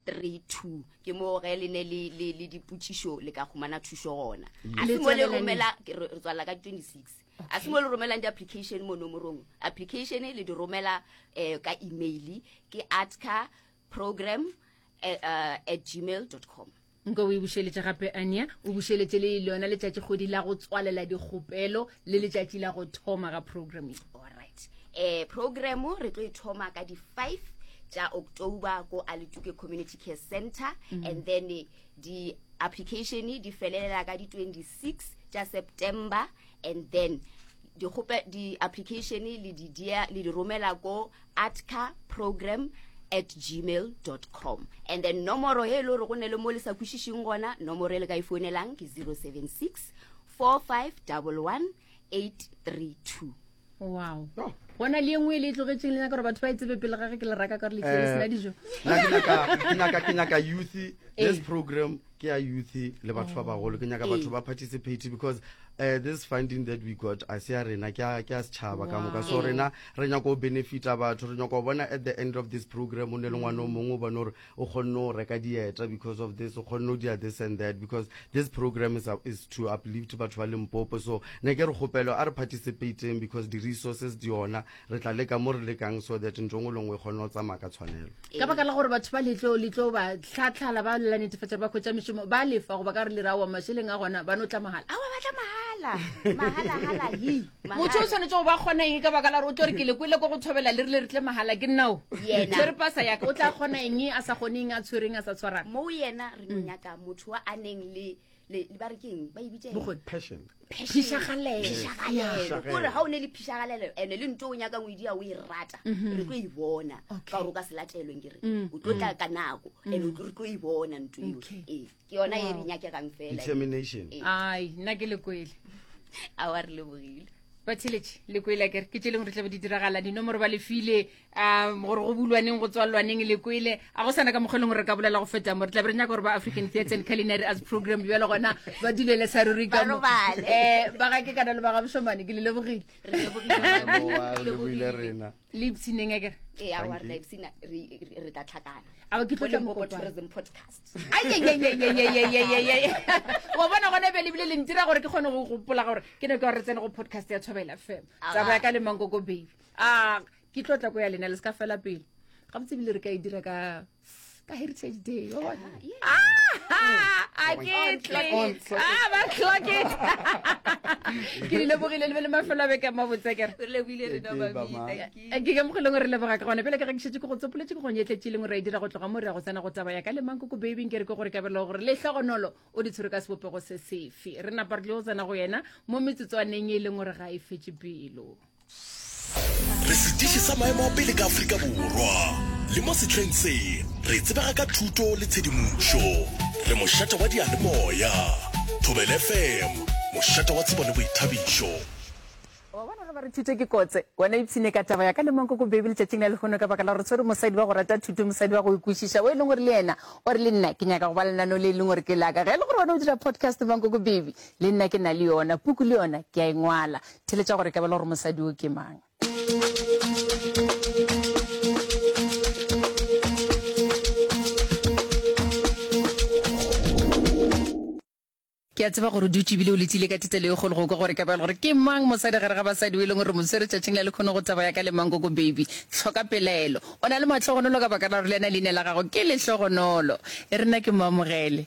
3, 2 ke moo ge le ne le, le, le dipotšišo le ka humana thušo gona a se mo le romela re tswalela ka 26 a se mo le romelang di-application mo nomorong application le di romela um ka email ke atcar program eh, uh, at gmail com nka o e bušeletša gape ania o bušeletše le lona letšatši kgwedi la go tswalela dikgopelo le letšatši la go thoma ga programming alright Eh, program re tlo ithoma ka di 5 tša october ko alituke community care center mm -hmm. and then eh, di application di felelela ka di 26 tša september and then di-application di le di dia le di romela ko atca program at gmail com and then nomoro e le gore go ne le mo le sa kwešišeng gona nomoro e le ka e founelang ke 076 4511 832 wow oh. bona le engwe e le e tlogetseng le nyaka gore batho ba e tsebe pele gage ke le raka ka gore le tlele sena eh, dijo ke nyaka youth eh. this program ke ya youth le batho ba oh. bagolo ke nyaka batho eh. ba participate because uh, this funding that we got a se ya rena ke a setšhaba ka moka so rena re nyako benefita batho re nyako bona at the end of this program o ne le ngwana o mongwe o bone gore o kgonne go reka dieta because of this o kgonne go dira this and that because this program is, is to uplift batho ba limpopo so ne ke re kgopelo a re participateng because di-resources di yona re tla leka mo re lekang so that ntho ngwe lengwe e kgone go tsamaya ka tshwanelo ka baka la gore batho ba letlo letlo ba tlhatlhala ba lela netefatsa ba khwetsa mešomo ba lefa goba ka re lerawa mašeleng a gona ba no tla mahala awa ba tla mahala mahala hala hi motho o tshwanetse go ba kgona eng ka baka la gore o tlo re ke le kwele ko go thobela le rile re tle magala ke nnao tse re pasa yaka o tla kgona eng a sa kgoneng a tshwereng a sa tshwarang moo yena re no mm. nyaka motho wa a neng le ba re keng ba ebitsephishagalegore ga o ne le phishagalela ande le nto o nyaka ngwedi ya o e rata mm-hmm. re tlo e bona ka gore o ka se latelweng ke re mm. o tlo tla ka nako mm. ande re tlo e bona nto eo ke yona e re nyakegang fela determination Eh. ai nna ke lekwele a wa re lebogile batheletše lekwele kere ke tšeleng re tlabe di diragala dinomoro ba lefile um gore go bulwaneng go tswalwaneng lekwele a go sana ka mokgwa e leng gore re ka bolela go feta mo re tlabe re nyaka gore ba african theatre and culinary as program bjalo gona ba dulele sa ruri ka mo. Ba robale. Eh, ba ga ke kana le ba ga bošomane ke le lebogile Re lebogile. Boa, re lebogile rena le ipsineng a kere ee a wa rena ipsina re tla tlhakana ao ke tlotla mokopa tourism podcast ayeyeyeyeyeyeyeye wa bona gona be lebile le ntira gore ke kgone go gopola gore ke ne ke gore tsene go podcast ya thobela fm tsabo ya ka le mankoko baby a ke tlotla ko ya lena le se ka fela pele ga botsebile re ka e dira ka ka heritage day yo bona a ke tle a ba clock it ke di lebogile le be le mafelo a beke mabotse kere ke ke mogileng gore leboga ka gone pele ke rekišetse ko go tsopoletse ke gonyetletše leng gore a e dira go tloga mo re ya go tsena go taba ya ka le mang ko ko babing ke re ke gore kabelo gore le tlhogonolo o di tshwere ka sebopego se sefe re napa re tle go tsena go yena mo metsotswaneng e leng gore ga e fetse pelo Re setiši sa maemo a pele ka Afrika Borwa, le mo sehleng se re tsebega ka thuto le tshedimošo. Re mošate wa diyalemoya, Thobela FM, mošate wa tsebo le boithabišo. Wa bona ge ba re thuto ke kotse, wena ipshine ka taba ya ka le mankoko baby letšatšing la lehono ka baka la gore tshwere mosadi wa go rata thuto, mosadi wa go e kwešiša, o e leng gore le yena o re le nna ke nyaka go ba lenaneo le e leng gore ke la ka. Ge e le gore wena o dira podcast mankoko baby, le nna ke na le yona, puku le yona ke a e ngwala. Theletša gore ka bela gore mosadi o ke mang. ke a tseba gore o dutse ebile o letsile ka thetelo e kgolo go kwa gore ka bjalo gore ke mang mosadi gare ga basadi o e leng gore mo tshwere tšatšing la le kgone go taba ya ka le mankoko baby tlhoka pelaelo o na le matlhogonolo ka baka la gore le ena leina la gago ke lehlogonolo e rena ke moamogele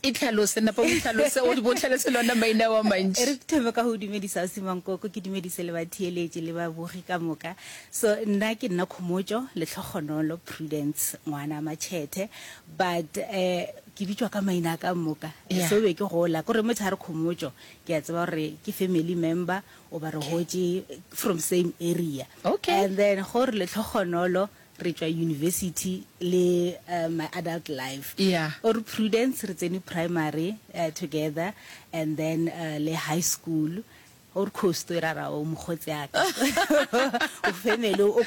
Itlhalose, napa o itlhalose, o di botlhalose lona maina wa mantši. Re thome ka go dumedisa Ausi Mankoko, ke dumedise le batheeletši le babogi ka moka. So, nna ke nna Khomotšo Letlhogonolo Prudence Ngwana Matšhethe, but eh ke bitšwa ka maina a ka moka. Yeah. So be ke gola, kore motho a re Khomotšo, ke a tseba gore ke family member, oba re hotše from same area. Okay. And then gore Letlhogonolo, re tšwa university le my adult life or Prudence re tsene primary together and then le high school or Coast e ra ra o mokgotsi yaka o family